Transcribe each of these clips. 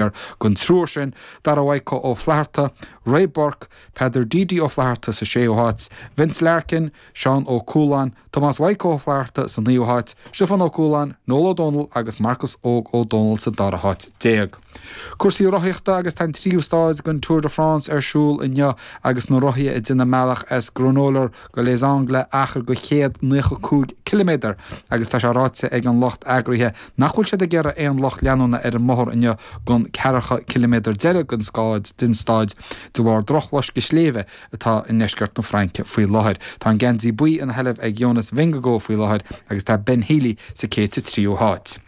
air den triúr sin, Dara Mhaidhcó Ó Flatharta, Ray Burke, Peadar Deedy Ó Flatharta sa séú háit, Vince Larkin, Seán Ó Cualáin, Tomás Mhaidhcó Ó Flatharta sa naoú háit, Stiofán Ó Cualáin, Noel Ó Dónaill agus Marcus Óg Ó Dónaill sa dara háit déag. Cúrsaí rothaíochta agus Tá an tríú stáid den Tour de France ar siúl inniu agus na rothaithe ag déanamh a mbealach as Granollers go Les Angles achar de chéad naocha cúig ciliméadar agus tá sé ráite ag an lucht eagraithe Nach bhfuil siad ag iarraidh aon lucht leanúna ar an mbóthar inniu don cheathracha ciliméadar deiridh den st, den stáid, de bharr drochloisceadh sléibhe atá i ndeisceart na Fraince faoi láthair. Tá an geansaí buí ina sheilbh ag Jonas Vingegaard faoi láthair agus tá Ben Healy sa céad sa tríú háit.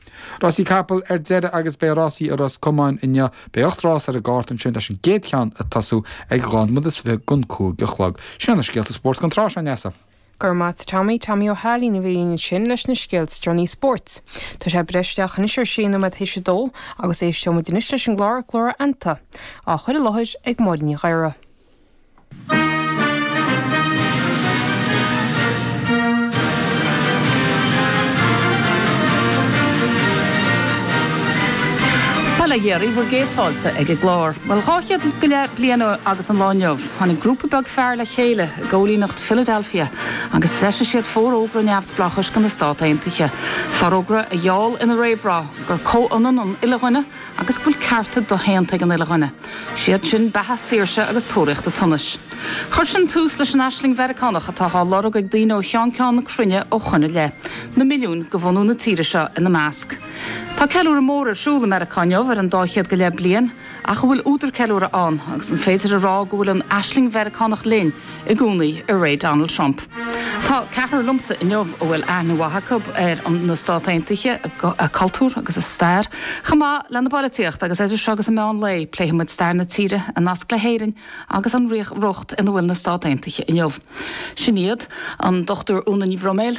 Rásaí capall ar deireadh agus beidh rásaí i Ros Comáin inniu. Beidh ocht rás ar an gcárta ansin leis an gcéad cheann ag tosú ag dhá nóiméad is fiche don cúig a chlog. Sin iad na scéalta spóirt don tráth seo, Neasa. Go raibh maith agat Tommy, Tommy Ó hAilín a bhí ansin leis na scéalta is deireanaí spóirt. Tá sé ag breith isteach anois ar sé nóiméad théis a dó agus éisteoimid anois leis an gclár Glór a Anta, á chur i láthair ag Máirín Ní Ghadhra. Tá le héirí bhur gcéad fáilte ag an gclár. Bhuel, dhá chéad go leith bliain ó shin sa lá inniu, tháinig grúpa beag fear le chéile i gcóilíneacht Philadelphia, agus d'eisigh siad Forógra Neamhspleáchais do na Stáit Aontaithe, forógra a gheall ina réamhrá gur comhionann an uile dhuine agus go bhfuil cearta doshéanta ag an uile dhuine, 'siad sin beatha, saoirse agus tóraíocht an tsonais. Chuir sin tús leis an aisling Mheiriceánach atá á lorg ag daoine ó cheann ceann na cruinne ó shoin i leith, na milliúin de bhunadh na tíre seo ina measc. Tá ceiliúradh mór ar siúl i Meiriceá inniu ar an dá chéad go leith bliain, ach an bhfuil údar ceiliúrtha ann agus an féidir a rá go bhfuil an aisling Mheiriceánach linn i gcónaí i ré Donald Trump? Tá ceathrar liomsa inniu a bhfuil aithne mhaith acu ar na Stáit Aontaithe, a cultúr agus a stair, chomh maith lena bpolaitíocht agus idir seo agus an meán lae pléifidh muid stair na tíre, a nasc le hÉirinn agus an riocht ina bhfuil na Stáit Aontaithe inniu. Sin iad, an Dr Úna Ní Bhroiméil,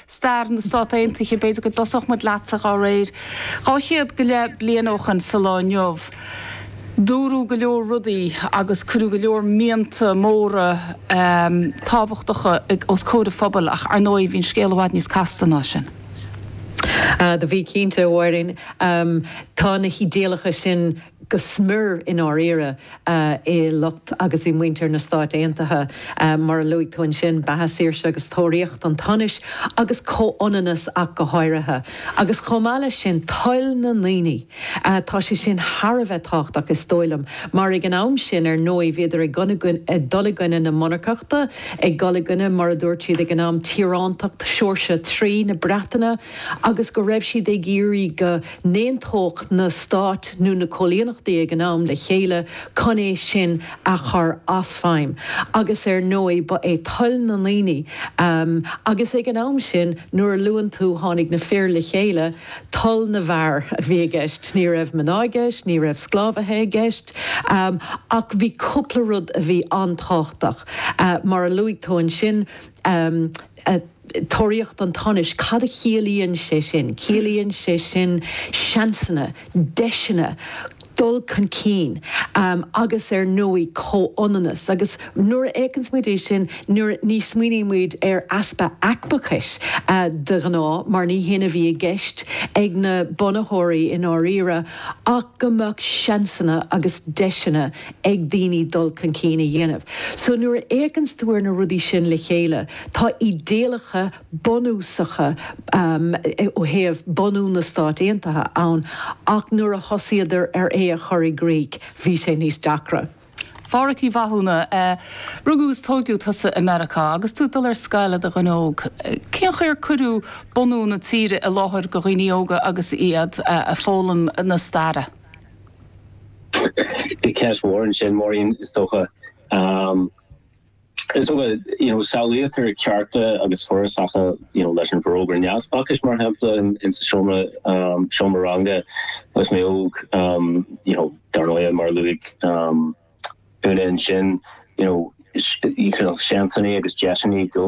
stair na Stát Aontaithe, b'fhéidir go dtosódh muid leatsa dá réir. Dhá chéad go leith bliain ó shin sa lá inniu, dúradh go leor rudaí agus cuireadh go leor mianta móra tábhachtacha os comhair an phobail ach, ar ndóigh, bhí an scéal i bhfad níos casta ná sin. Do bhí, cinnte, a Mháirín. Tá na hidéalacha sin go smior, i ndáiríre, i lucht agus i muintir na Stáit Aontaithe. Mar a luaigh tú ansin, beatha, saoirse agus tóraíocht an tsonais, agus comhionannas ach go háirithe, agus chomh maith leis sin, toil na ndaoine, tá sé sin thar a bheith tábhachtach, is dóigh liom, mar ag an am sin, ar ndóigh, bhíodar ag dul i gcoinne na monarcachta, ag dul i gcoinne, mar a dúirt siad ag an am, tíorántacht Sheoirse a Trí na Breataine, agus go raibh siad ag iarraidh go. n-aontódh na stáit nó na coilíneachtaí ag an am le chéile cun é sin a chur i bhfeidhm, agus ar ndóigh ba é toil na ndaoine, agus ag an am sin nuair a luann tú tháinig na fir le chéile, toil na bhfear a bhí i gceist. Ní raibh mná i gceist, ní raibh sclábhaithe i gceist, ach bhí cúpla rud a bhí an-tábhachtach, mar a luaigh tú ansin, Tóraíocht an tsonais, cad a chiallaíonn sé sin? Ciallaíonn sé sin seansanna, deiseanna, dul chun cinn agus ar ndóigh comhionannas. Agus nuair a fhéachanns muid air sin ní smaoinímid ar easpa aicmeachais de ghnáth mar ní hin a bhí i gceist ag na bunaitheoirí i ndáiríre ach go mbeadh seansanna agus deiseanna ag daoine dul chun cinn a dhéanamh. So nuair a fhéachanns tú ar na rudaí sin le chéile, tá idéalacha bunúsacha ó thaobh bunú na Stát Aontaithe ann ach nuair a thosaíodar ar é a chur i gcrích, bhí sé níos deacra. A Phádhraic Uí Mhathúna, rugadh is tógadh tusa i Meiriceá. Agus tú ag dul ar scoil i do dhuine óg, cén chaoi ar cuireadh bunú na tíre i láthair do dhaoine óga agus iad ag foghlaim na staire? Ceist mhór ansin, a Mháirín, is dócha. Is dócha, you know, samhlaítear cearta agus forásacha, you know, leis an bhForógra Neamhspleáchais, mar shampla, in sa seomra, seomra ranga agus mé óg, you know, dar ndóigh, mar a luaigh Úna ansin, you know, seansanna agus deiseanna go